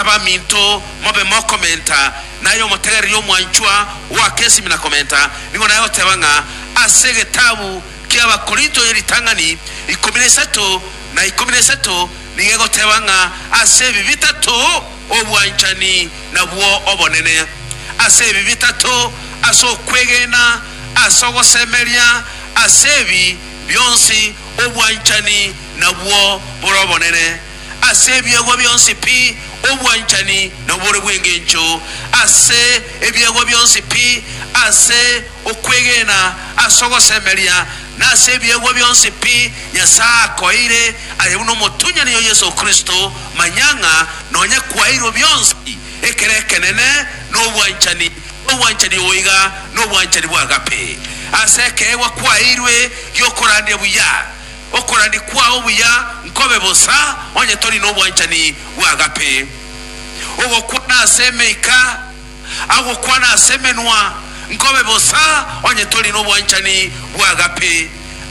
Abaminto, mobe mokomenta, naye omotegereria omwanchwa ogoaka esimi na komenta, nigo naye oteeba ng'a ase egetabu ki'Abakorinto ye ritang'ani ikomi na isato na ikomi na isato nigo egoteeba ng'a ase ebi bitato obwanchani nabwo obonene, ase ebi bitato ase okwegena, ase ogosemeria, ase ebi bionsi obwanchani nabwo bore obonene. ase ebiegwa bionsi pi obwanchani na obore bw'engencho, ase ebiegwa bionsi pi ase okwegena ase ogosemeria, na ase ebiegwa bionsi pi Nyasae akoeire aye buna omotunyani o Yeso Kristo, manya ng'a nonya kwaeirwe bionsi ekero ekenene na obwanchani, obwanchani obo iga nobwanchani bw'agape. Ase ekeegwa kwaeirwe gi'okorandia buya. okorania kwao buya nkobe bosa onye tori nobwanchani bw'agape. Ogokwana ase emeika agokwana ase emenwa nkobe bosa onye tori nobwanchani bw'agape.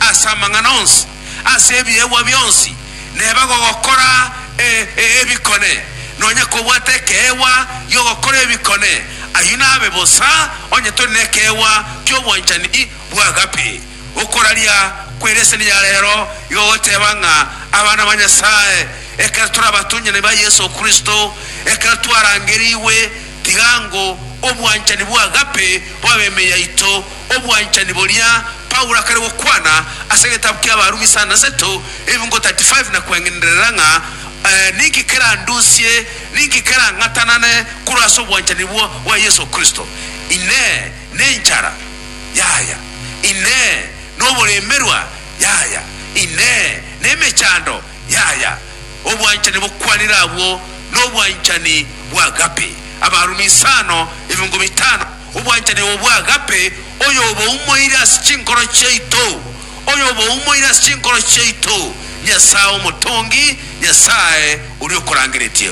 Ase amang'ana onsi ase ebiegwa bionsi neba gogokora e, e, ebikone, nonya kobwata ekeegwa gi'ogokora ebikone, ayio nabe bosa onye tori nekeegwa ki'obwanchani bw'agape. Okoraria kw'ereseni ya rero igo goteba ng'a abana ba Nyasae ekero tore abatonyani ba Yeso Kristo, ekero twarangerigwe, tiga ng'o obwanchani bw'agape bobe ime yaito, obwanchani boria Paulo akare gokwana ase egetabu ki'Abarumi sana na seto, ebiungo 35 na kweng'enderera ng'a, Ninki kerandusie? Ninki kerang'atanane korwa ase obwanchani bwa Yeso Kristo? Inee! Nenchara? Yaya, Inee, noboremerwa? Yaya, Inee, nemechando? Yaya, Obwanchani bokwanire abwo nobwanchani bw'agape, abarumi isano, ebiongo bitano, obwanchani obo bw'agape, oyoboumoire ase chinkoro chiaito, oyoboumoire ase chinkoro chiaito, Nyasae Omotongi, Nyasae oria okorangeretie.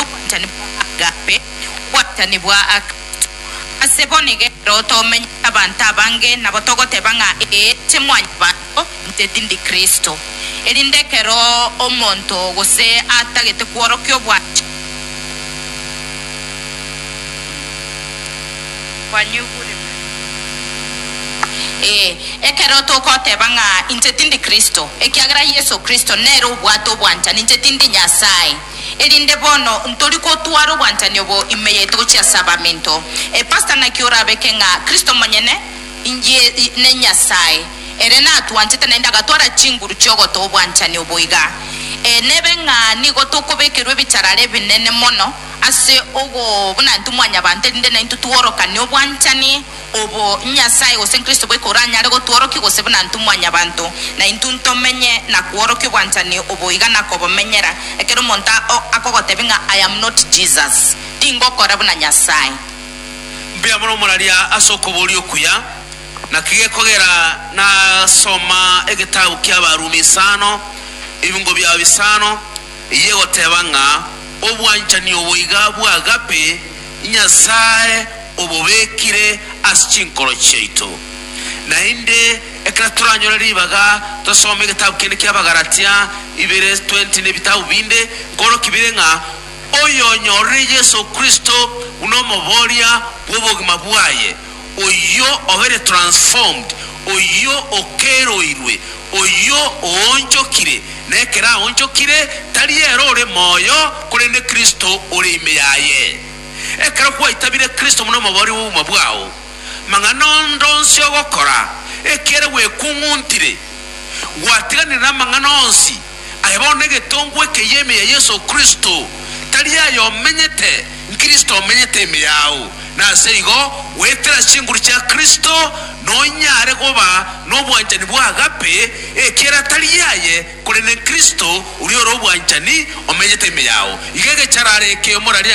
obwanchani bwa agape, obwanchani bwa Kristo. Ase bono ekero tomenyete abanto abange, nabo togoteba ng'a ee, inche mwanyabanto, inche tindi Kristo. Erinde ekero omonto gose atagete kworokia obwanchani, kwanyegurirwe. Ee, ekero togoteba ng'a inche tindi Kristo, ekiagera Yeso Kristo nere obwate obwanchani, inche tindi Nyasae, erinde bono ntori gotwara obwanchani obo ime yaito gochia ase abaminto. E pastor naki orabeke ng'a Kristo monyene inye ne Nyasae ere natwanchete naende agatwara chinguru chiogotoa obwanchani obo iga. Ee, nebe ng'a nigo tokobekerwa ebicharara ebinene mono ase ogobunantu mwanyabanto, erinde naintwe tworokane obwanchani obo Nyasae gose Kristo boika oranyare gotworokia gose buna intwe mwanyabanto, naintwe ntomenye na kworokia obwanchani obo iga nakobomenyera. Ekero omonto akogotebia ng'a I am not Jesus, tingokora buna Nyasae. Mbuya mono moraria ase okoboria okuya. Naki gekogera nasoma egetabu ki'Abarumi isano, ebingo biao bisano, Eyio egoteba ng'a obwanchani obo iga bw'agape Nyasae obobekire ase chinkoro chiaito. Naende ekero toranyore ribaga tosome egetabu kende ki'Abagalatia ibere 20 na ebitabu binde, nkoroki bire ng'a oyonyorire Yeso Kristo buna omoboria bw'obogima bwaye, oyio obere transformed, oyio okeroirwe, oyio oonchokire, na ekero aonchokire, tari ere ore moyo, korende Kristo ore ime yaye. Ekero gwaitabire Kristo buna omobori bw'obogima bwao, mang'ana onde onsi ogokora, ekiagera gwekung'untire, gwatiganire namang'ana onsi, Aye bono egetongo ekeyio ime ya Yeso Kristo, tari aye omenyete, n'Kristo omenyete ime yao, na ase igo goetera chinguru chia Kristo, nonyare goba nobwanchani bwa agape, ekiera tari aye, korende n'Kristo, oria ore obwanchani, omenyete ime yao. Iga egecharara eke omorarire